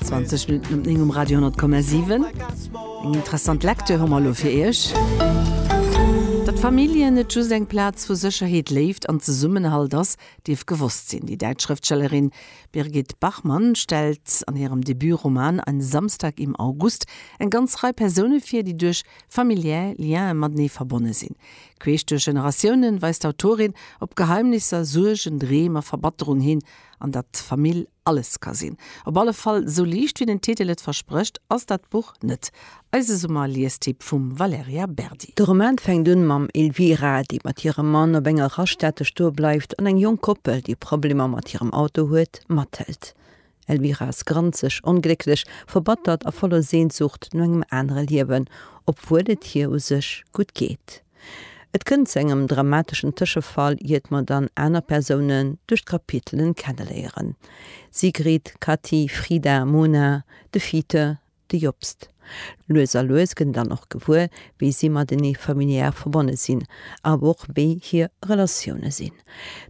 20 Minutten op 9 um Radio 10,7. Eng interessant Lektür hu mer elo fir Iech. Datt Familljen net just eng Plaz vu Sécherheet, Léift an Zesummenhalt ass, dierf gewosst sinn. Déi däitsch Schrëftstellerin Birgit Bachmann stellt an hirem Debut-Roman Ein Samstag im August eng ganz Rei Persoune vir, déi duerch familiär Liene matenee verbonne sinn. Queesch duerch Generatiounen weist d'Autorin op Geheimnisser, Suergen, Dreem a Verbatterung hin An datt Famill alles ka sinn. Op alle Fall, esou liicht wéi den Titel et versprécht, ass dat Buch net. Eise Summer-Liestipp vum Valerija Berdi. De Roman fänkt un mam Elvira, déi mat hirem Mann op enger Raststätte stoe bleift an eng jonk Koppel, déi Problemer mat hirem Auto huet, mathëlt. Elvira ass granzeg, onglécklech, verbattert a voller Sehnsucht no engem anere Liewen, obwuel et hir u sech gutt geet. Et kënnt zu engem dramateschen Tëschefall, iert mer dann aner Persounen duerch d'Kapitelen kenneléieren, Sigrid, Kati, Frida, Mona, de Fite, de Jobst. Lues a lues gëtt een dann och gewuer, wéi si matenee familiär verbonne sinn, awer och wéi hir Relatioune sinn,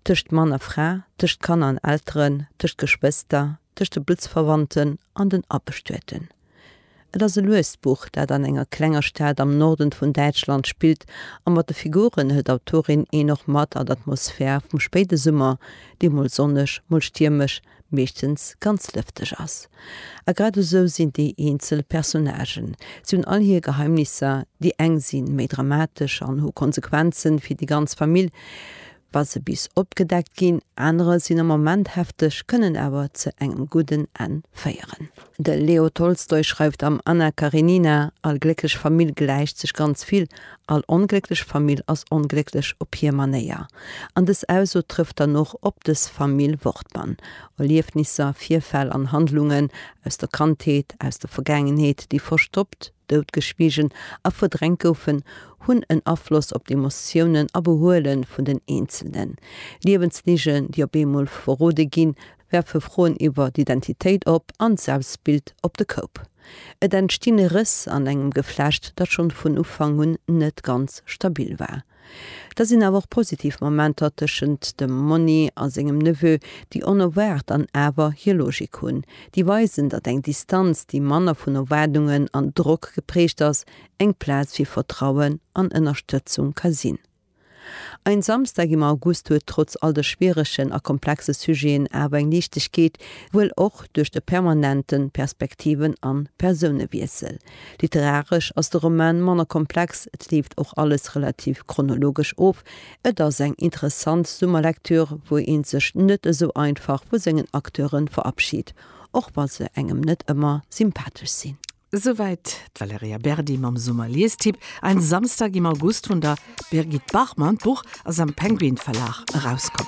tëscht Mann a Fra, tëscht Kanner an Elteren, tëscht Geschwëster, tëscht de Blutsverwandten an den Abestueten. Et ass e luest Buch, dat an enger klenger Stad am Norden vun Däitschland spillt, a mat de Figuren hëlt d'Autorin een och mat an d'Atmosphär vum spéide Summer, dee mol sonneg, mol stiermesch, meeschtens ganz lëfteg ass. A grad esou sinn déi eenzel Personnagen. Si hunn all hir Geheimnisser, déi eng si méi dramatesch an hu Konsequenze fir déi ganz Famill, wa se bis opgedeckt ginn, anere sinn am Moment hefteg, kënnen awer ze engem gudden Enn féieren. De Leo Tolstoi schreift am Anna Karenina, All glécklech Famill gläicht sech ganz vill, all onglécklech Famill ass onglécklech op hir Manéier. An dës Ausso trëfft dann och op dës Famill Wortmann. Erliefnisser, Virfäll an Handlungen aus der Kandheet, aus der Vergaangenheet, déi verstoppt, doutgeschwiegen a verdrängt goufen, hunn en Afloss op d'Emotiounen a Behuele vun den Eenzelnen. Liewensligen, déi op eemol verrode ginn, werfe Froen iwwer d'Identitéit op an d'Selbstbild op de Koup. Et entstinn Rëss an engem Geflecht, dat schonn vun Ufank un net ganz stabil war. Da sinn awer och positiv Momenter tëschent dem Monni a sengem Neveu, déi onerwaart an awer hir Logik hunn. Déi weisen, datt eng Distanz, déi manner vun Erwaardungen an Drock geprägt ass, eng Plaz fir Vertrauen an Ënnerstëtzung ka sinn. Ein Samstag im August huet trotz all de schwieregen a komplexe Sujeten awer eng Liichtegkeet, wuel och duerch de permanenten Perspektiven an Persounewiessel. Literaresch ass de Roman manner komplex, et leeft och alles relativ chronologesch of. Et ass eng interessant Summerlektür, wou een sech net esou einfach vu sengen Acteure verabschied, och wa se engem net ëmmer sympathesch sinn. Esouwäit d'Valerija Berdi mam Summerliestipp Ein Samstag im August vun der Birgit Bachmann. D'Buch ass am Penguin Verlag erauskomm.